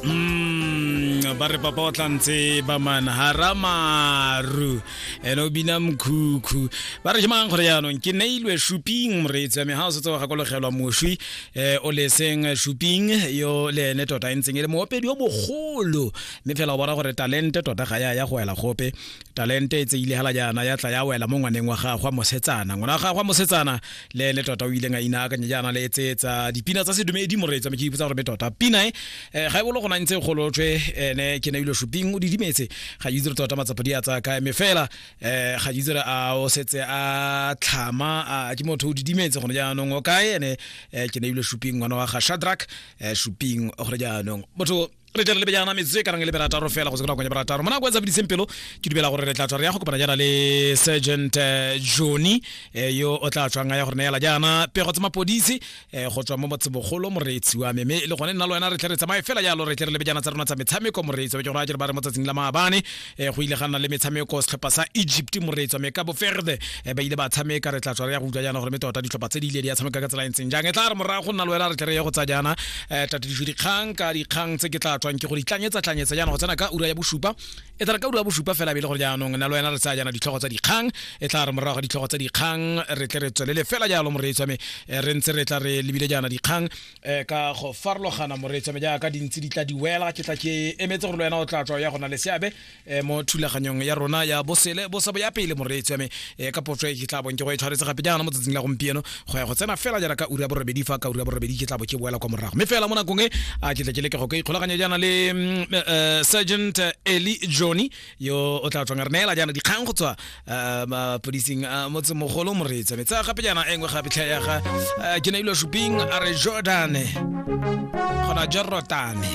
mm, ba re papa o tla ntse ba mana haramaru ene o bina mkhukhu ba re jemang gore yaanong ke neilwe shuping moreetsi wa me ga o setse wa gakologelwa moswi eh, o leseng shuping yo le ene tota e ntseng e le moopedi yo bogolo mme fela o bona gore talente tota ga ya ya go wela gope talente e tseile hala jaana ya tla ya wela mo ngwaneng wa gagwe mosetsana ngwana wa gagwe mosetsana le ene tota o ileng a inaakanya jaana le etsetsa dipina tsa sedumedi moreetsa me ke ipotsa gore me tota pina e eh, ga e bolo go na ntse kgolo tshwe ene ke ne ile shooting o didimetse ga itse re tota matsapa di a tsaya kae me fela eh, ga itse re a o setse a tlhama a ke motho o didimetse gone jaanong o kae ene eh, ke ne ile shooting ngwana wa ga Shadrack eh, shooting gone jaanong motho re tle re lebe jaana metse ka rang le berataro fela go se ka konya berataro mona go etsa bidiseng pelo ke dibela gore re tla tswa re ya go kopana jaana le sergeant eh, Johnny eh, yo o tla tswang ya gore ne yala jaana pego tsa mapodisi eh, go tswa mo motsebogolo moreetsi wa meme le gone nna le wena re tle re tsamaye fela jalo re tle re lebe jaana tsa rona tsa metshameko moreetsi wa ke gore a jere ba re mo tsatsing la maabane eh, go ile ga nna le metshameko setlhopha sa egypt moreetswa me ka boferde eh, ba ile ba tshameka re tla tswa re ya go utlwa jaana gore me tota ditlhopha tse di ile di ya tshameka ka tsela e ntseng jang e tla re morago go nna le wena re tle re ye go tsa jaana eh, tatediso dikgang ka dikgang tse ke tla tswang ke go di tlanyetsa tlanyetsa jaana go tsena ka ura ya bosupa e tla re ka ura ya bosupa fela be e le gore jaanong nna le wena re tsaya jaana ditlhogo tsa dikgang e tla re morago ga ditlhogo tsa dikgang re tle re tswelele fela jalo moreetswa me eh, re ntse re tla re lebile jaana dikgang um ka go farologana moreetso me jaaka dintsi di tla di wela ke tla ke emetse gore le wena o tla tswa ya gona le seabe um mo thulaganyong ya rona ya bosele bosebo ya pele moreetso ya me um ka potso e ke tla bong ke go e tshwaretse gape jaana mo tsatsing la gompieno go ya go tsena fela jaana ka uri ya borobedi fa ka uri ya borobedi ke tla bo ke boela kwa morago mme fela mo nakong e a ke tla ke leke go ka ikgolaganya jaana le um sergeant eli johnny yo o tla tswang re neela jaana dikgang go tswa eh, mapodising a motsemogolo moreetsa ne tsaya gape jaana e nngwe gape tlha ya ga eh, ke nailwe shopping a re jordane gona jorotane